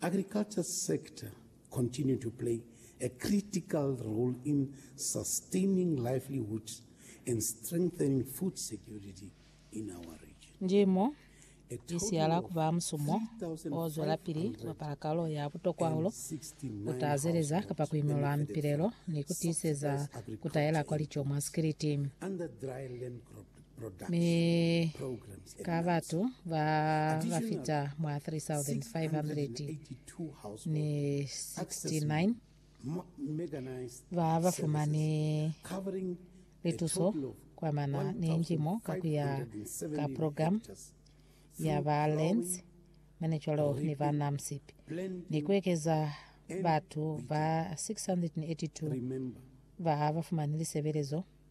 Agriculture sector continue to play a critical role in sustaining livelihoods and strengthening food security in our region. Ndimo i siala ku ba musumo o zwelapili ku bapala kalo ya butokwahulo ku tazeleza kapa ku imulwa mipilelo ni ku tiiseza ku taela kwa lico mwa sikiliti. mi ka batu ba ba fita mwa 3,569 ba ba fumani lituso kwa mana ni njimo ka ku ya ka programu ya ba Lands Managerial ni ba NAMSIP ni ku ekeza batu ba 682 ba ba fumani lisebelezo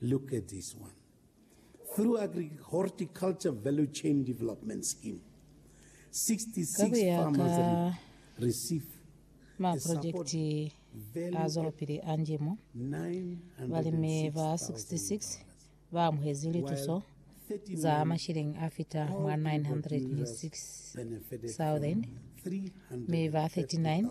Look at this one. Through Agri-Horticulture Value Chain Development Scheme, 66 farmers receive maprojekiti a zwelopili a ndimo, balimi ba 66 ba amuhezi lituso za mashilingi a fita mwa 906,000 mi ba 39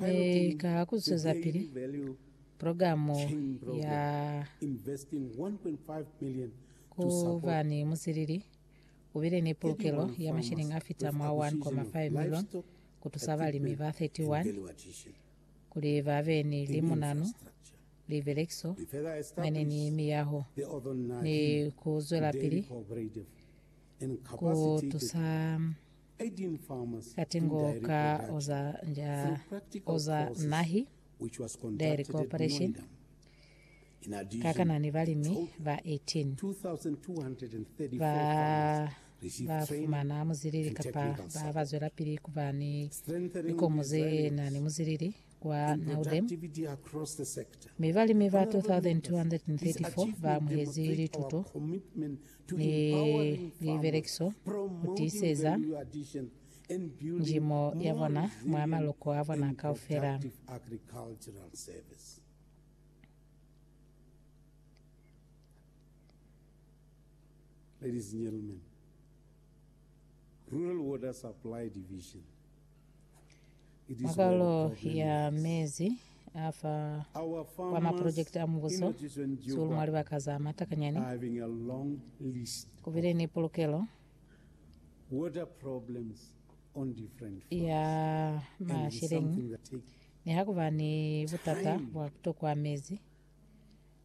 Ee, ka ku zwezapili pulogalamu ya ku ba ni musilili, u bile ni pulukelo ya mashilingi a fita mwa 1.5 milioni ku tusa balimi ba 31 kuli ba be ni limunanu, libelekiso, mane ni miyaho, ni ku zwelapili ku tusa Kati ngo ka oza nja oza nahi, dairy cooperation, kakana ni balimi ba 18 ba ba fumana muzilili kapa ba ba zwelapili ku ba ni likomo ze na ni muzilili kwa Naudem, mi balimi ba 2,234 ba amuhezi lituto. ni libelekiso kutiiseza njimo yabona mwa maloko abona kaufela. Ladies and gentlemen, Rural Water Supply Division Mwa Kalo ya Mezi a fa kwa Maprojekiti a Mubuso, Zulu mwa libaka za matakanyani ku bile ni pulukelo ya masheleñi nihakuba ni butata bwa ku tokwa mezi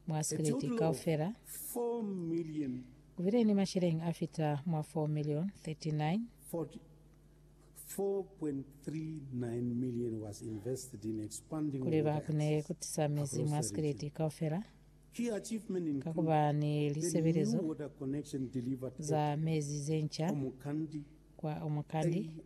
mwa sikiliti kaufela. Ku bile ni masheleñi a fita mwa 4 milioni, 39, 4.39 million was invested in expanding Kuli ba water kune ku access tisa mezi across mwa the Sylhet region. kaufela Key achievement ka include ku ba ni building new lisebelezo water connection delivered za at mezi ze nca Omokandi, kwa Omokandi,